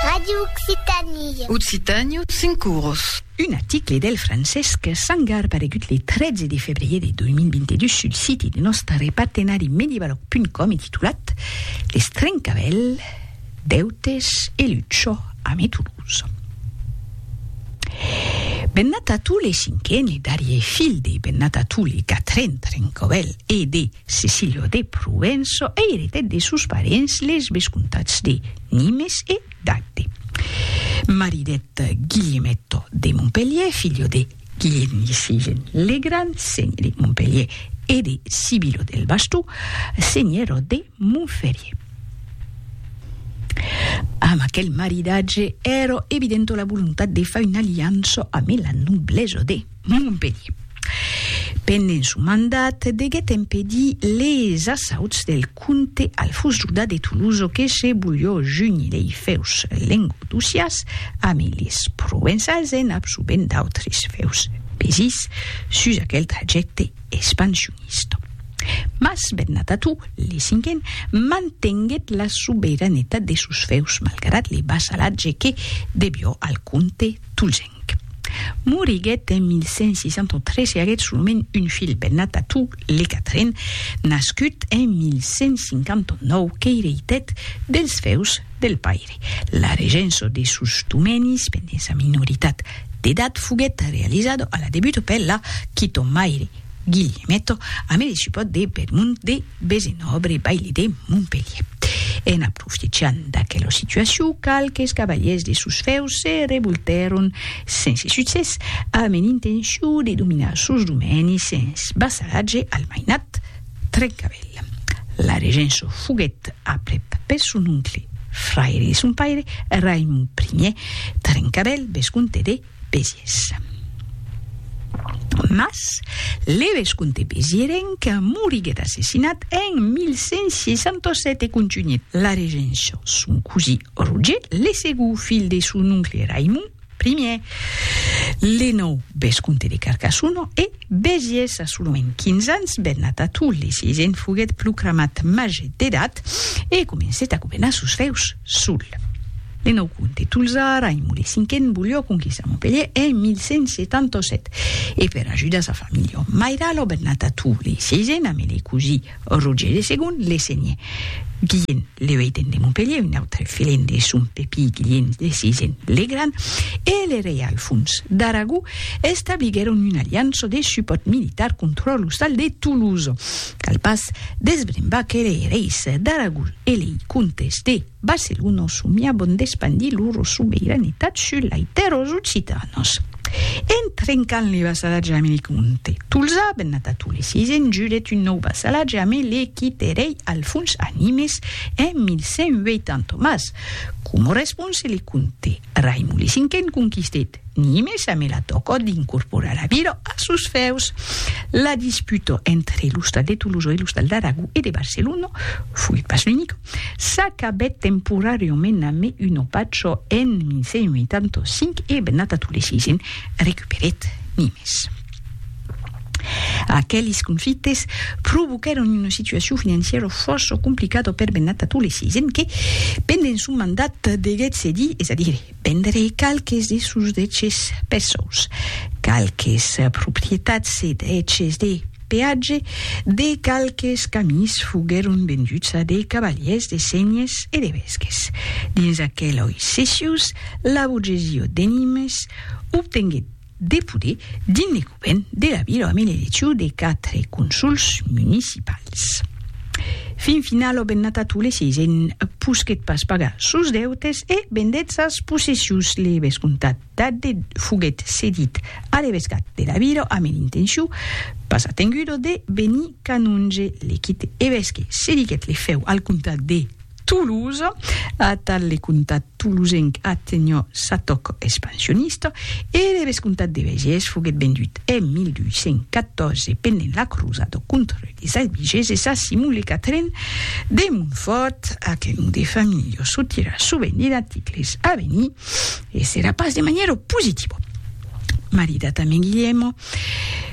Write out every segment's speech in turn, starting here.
Radio Occitanie. Occitània, cinc cours. Un article del Francesc Sangar paregut le 13 de febrier de 2022 sul siti de nòstare partenari medievaloc.com e titulat Les trencavèl, deutes e lucho ame Toulouse. Bennat a tous les cinquen e darrier fil de bennat a tous les quatren trencavèl e de Cecilio de Provenço eiretèt de sos parents les vescomtats de Nimes e d'Agde. Maridèt Guilhemetto de Montpelhièr, filho de Guilhèm Sisgèn le Gran, senhor de Montpelhièr, e de Sibilo del Bastó, senhora de Montferrier. Amb aquel maridatge èra evidenta la volontat de far una aliança amé la noblesa de. de Montpelhier. Pendent son mandat, deguèt empedir les assauts del comte Alfons Juda de Tolosa que se bolhò junir lei fèus lengodocias amb les provençals en absorbent d'autres fèus pesits sus aquel trajècte expansionista. Mas Bernat Atú, le cinquen, mantenguèt la soberanetat de sos fèus malgrat le vassalatge que debió al comte tolzen. Moriguèt en 1163 e aguèt solament un filh, Bennatatù le Quatren, nascut en 1159, qu'eireitèt dels feus del paire. La regença de sos domenis pendent sa minoritat d'edat foguèt realizada a la debut per la Quitomaire, Guillimetto a me discipòt de Bedmont de Besenòbre, baili de Montpelhier. En aprofitechant d'aquela situacion, qualques cavaliers de sos fèus se revoltèron, sense succès, a me l'intencion de dominar sos domènis sens vassalatge al mainat Trencavèl. La regença foguèt aprèp per son oncle, fraire de son paire, Raimond Ier Trencavèl, vescomte de Besiers. Mas, le vescomte besierenc moriguèt assassinat en 1167 e contunhèt la regéncia son cosí Roger, le segó filh de son oncle Raimond I. Le nòu vescomte de Carcassona e Besiers assolament 15 ans, Bernat Ató, le sisent, foguèt procramat màger d'edat e comencèt a governar sos fèus sol. Le nòu comte tolzà Raimon le Cinquen volió conquistar Montpelhièr en 1177 e per ajudar sa familha mairala o Bernata Tou le Sieisen amé le cosí Roger le Segond le senhè Guilhèn le Ueiten de Montpelhièr, un autre filèn de son pepí Guilhèn le Sieisen le Grand e le rei Alfons d'Aragó establiguèron una aliança de supòrt militar contra l'ostal de Toulouse. Cal pas desbrembar que lei reis d'Aragó e lei comtes de Barcelonos somiabon d'espandir loro sobeiranetat sus lai tèrros occitanos. En trencant le vassalatge ame le comte Tolzà, bennat a Toles, i se'n juret un nòu vassalatge ame le quite rei Alfons a Nimes en 1180, mas, coma response, le comte. Raimon le Cinquen conquistèt Nimes amé la tòca d'incorporar la vila a sos fèus. La disputa entre los tals de Tolosa e los tals d'Aragó e de Barcelona, foguèt pas l'unica, s'acabèt temporàriament amé una pacha en 1185 e Bernat Atolesisen recuperèt Nimes. Aqueles conflictes provoquèron una situacion financièra fòrça complicada per Bennat a Tolèsi, essent que, pendent son mandat, deguèt cedir, es a dire, vendre qualques de sos deches perçuts, qualques proprietats e deches de peatge de qualques camins foguèron venduts a de cavalièrs de senhes e de vesques. Dins aqueloi cessius, la borgesia de Nimes obtenguèt, de poder dins le govern de la vila amb l'eleccion de 4 consols municipals. Fin final òben nata tous les 6 en posquet pas pagar sos deutes e vendèt sas possessions le vescomtat d'Adde foguèt cedit a l'evescat de la vila amb l'intencion pas atengudo de venir canonge le quite evesque cediguèt le fèu al comtat de Toulouse, atal le comtat toulousenc atenhò sa tòc expansionista e le vescomtat de Vèges foguèt vendut en 1214 pendent la crosada contra les Albigeses a Simon le Quatrèn de Montfòrt, a que non de familha çò tira sovent de d'articles a venir e serà pas de manièra positiva. Maridat amé Guilhèmo,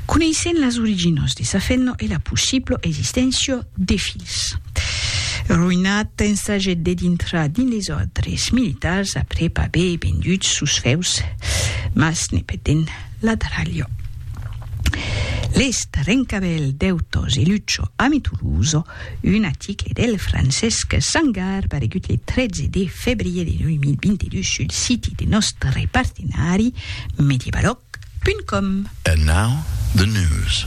Coneissent las originas de sa fenna e la possibla existéncia de filhs. Roinat ensagèt de dintrar dins les òrdres militars aprèp aver vendut sos fèus, mas ne petent la tralha. Lest Rencabèl, Dèutas e Lucha, ami Tolosa, Un aticle del Francesc Sangar paregut le 13 de febrier de 2022 sul siti de nòstre partenari Medievaloc.com. And now the news.